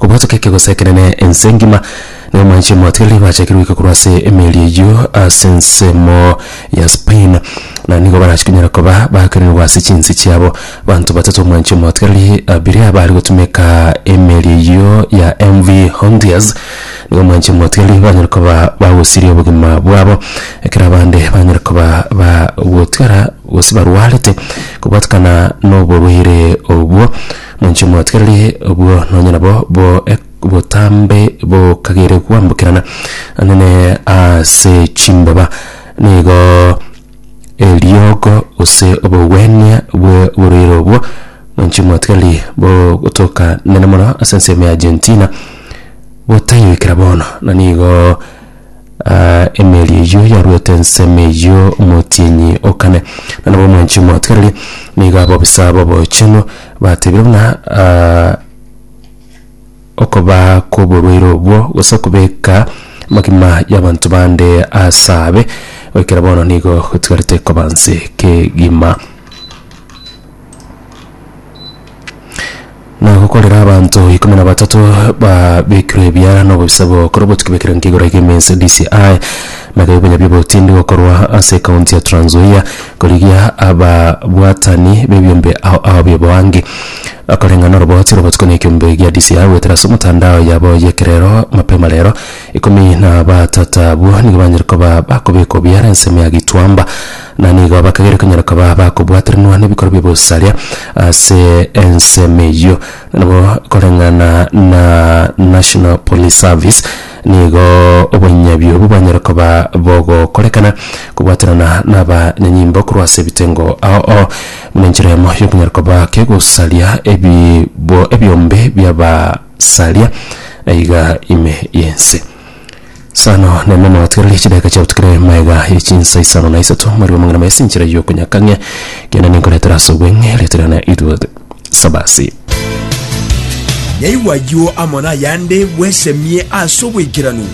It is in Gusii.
Obotuke ekegoso ekenene ense engima, na omwanche omotigereri gwachakire goika korwa ase emeeri eyio ase ensemo ya Spain, na nigo barachie konyara koba bakerenerwa ase chinse chiabo. Banto batato omwanche omotigereri abiria bare gotumeka emeeri eyio ya MV Hondias, nigo omwanche omotigereri banyare koba bagosiria obogima bwabo, ekero abande banyare koba ba gotigara gose barwarete kobatukana noborwaire obwo. Nainche mwatigarire obwo nonye nabo bo ek- botambe bokagere gwambokerana nene ase chimbaba, nigo eriogo gose obogwenia bwe borwaire obwo nainche mwatigariri bo gotoka nene mono ase ensemo ya Argentina botayoikera bono na nigo Aa, emeeri eyio yarwete ensemo eyio omotienyi o kane, na nabo omwanchi omotigarerie, nigo abobisa b'obochenu batebire buna, Aa, okobaa kw'oborwaire obwo, gose okobeka amagima y'abanto bande aase abe, goikera bono nigo gotigarete koba nse kegima. Na gokorera abanto ikomi na batato babekirwe ebiara na obobisa bokorwa botuki bw'ekerengo igoro ege emensi ya DCI na ebibuya bi'obotindi gokorwa ase ekaunti ya Trans Nzoia korigia ababwatani b'ebiombe ao ao bi'oboangi bakoreng'a noroboti robo botuko na ekiombe gia DCI goetera ase omotandao yabo y'ekerero mapema rero. Ikomi na batata abwo nigo banyare koba bakobekwa ebiara ensemo ya Gituamba. Na nigo bakagera konyara koba bakobwatrenwa nebikorwa bi'obosaria ase ensemo eyio. Na nabo koreng'ana na National Police Service, nigo obonyabio obwo bwanyare koba bogokorekana kobwaterana nabanyanyimbo korwa ase ebitengo ao ao, buna enchera eyemo y'okonyara koba kegosaria ebibo ebiombe bi'abasaria aiga ime y'ense. Sano na ime nabatigereri chidakika chiabutukire maega ye chinsa isano na isato mweri wa mang'ana maisi nchera y'okonyakang'ia kende ninkoretera ase obweng'e riaterana itwe sabasi Yaigwa ayio amo nayande bwesemie ase obwekeranu.